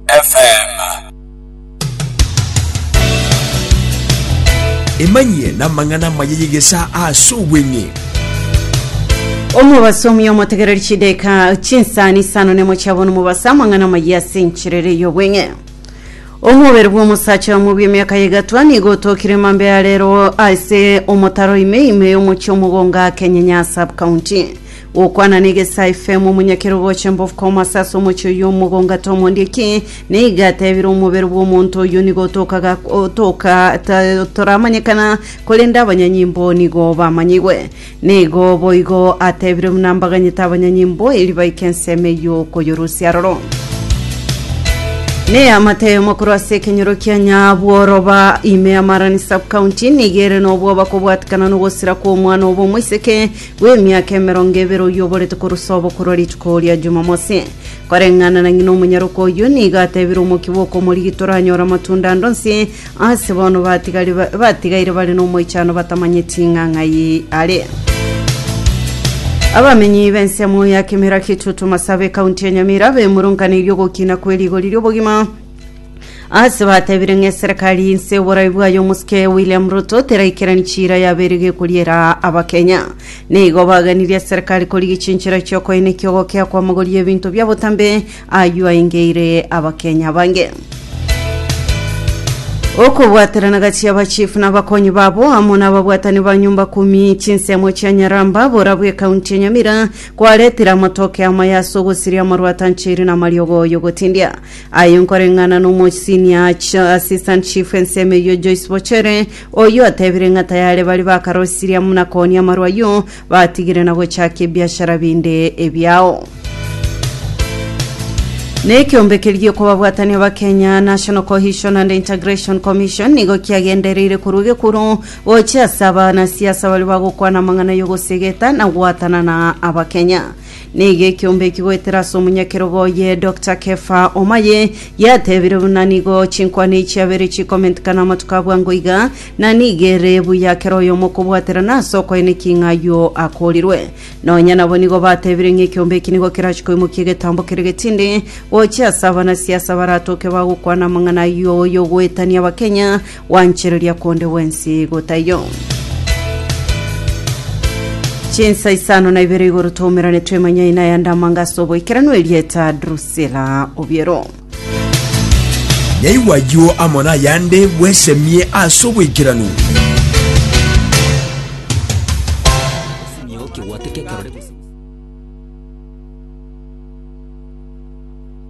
FM. Emanyie namang'ana amaya y'egesa ase obweng'e. Omobaso omuya omotegereri chideka chinsani isano nemo chiabona omobaso amang'ana amaya ase enchirere y'obweng'e omobere bw'omosacha omo bw'emiaka yegatwa nigo otokire mambe ya rero ase omotaro ime ime y'omochie omogonga kenye nya sub county Gokwana negesa efemu omonyakerogocha embofu komasa ase omochie oyio omogonga ata omondieki, na iga atebire omobere bw'omonto oyio nigo otokaga otoka ta toramanyekana, korende abanyanyimbo nigo bamanyigwe. Na igo boigo atebire buna mbaganyete abanyanyimbo erio baike ensemo eyio koyorusia aroro. Ne amatemo korwa ase ekenyoro kia Nyabworoba ime y'Amarani Sub-County nigo ere nobwoba kobwatikana nogosira kw'omwana obo omoiseke bw'emiaka emerongo ebere oyio oborete korwa sobo korwa rituko ria Jumamosi. Koreng'ana na ng'ina omonyaroka oyio nigo atebire omokia bw'okomorigi toranyore amatunda ande onsi ase bono batigari ba- batigaire bare n'omoichano batamanyeti ng'a ng'ai are. Abamenyi b'ensemo ya Kimera Kitutu Masabe ekaunti ya Nyamira bemurunkaneirie ogokina kwe rigori ri'obogima ase batebire ng'a eserekari inse oborai bwayo omosuke william ruto teraikerani chiira yabeire gekoriera abakenya nigo baganirie eserekari korigia chinchera chiokoina ekiogokea kwamagori ebinto bia botambe aywo aingeire abakenya bange okobwaterana gati y'abachifu n'abakonyi babo amo n'ababwatani ba nyumba kumi chinsemo chia nyaramba borabwo ekaunti ya nyamira kwaretire amatoke amaya ase ogosiria amarwatancheiri na amariogo y'ogotindia Aye nkoreng'ana nomosiniya acho Assistant Chief ensemo eyio Joyce Bochere, oyio atebire ng'a tayare baria bakarosirie amo na Koni amarwa ayio, batigire na gochakia ebiashara binde ebiao. Nekiombe keria kobabwatania Abakenya, National Cohesion and Integration Commission, nigo kiagendereire korwa egekuru gochia ase abanasiasa baria bagokwana amang'ana yogosegeta na goatanana Abakenya. Nigo ekiombe eki goetera ase omonyakerogo oye Doctor Kefa Omaye yatebire buna nigo chinkwana echi chiabere chikomentikana amatuko a bwango iga, na nigo ere buya kera oyomo okobwaterana ase okoenekia ng'a ayio akorirwe. Nonya nabo nigo batebire ng'a ekiombe eki nigo kerache koimokia egetambo kere getindi gochia ase abanasia ase abaratoke bagokwana amang'ana ayio y'ogoetania Abakenya Gwanchereria konde gwensi igo taiyo. Chinsa isano na ibere igoro twaumerane twemanya ina ya ndamanga ase oboikeranu erieta Drusilla Obiero. Yaigwa ayio amo nayande bwesemie ase oboikeranu.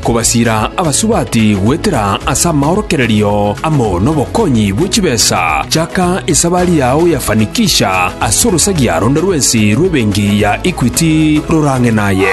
Kobasiira abasubati goetera ase amaorokererio amo nobokonyi bwe chibesa, chaka esabari yao ya fanikisha ase orosagia ronde rwensi rw'ebenki ya Equity rorang'e naye.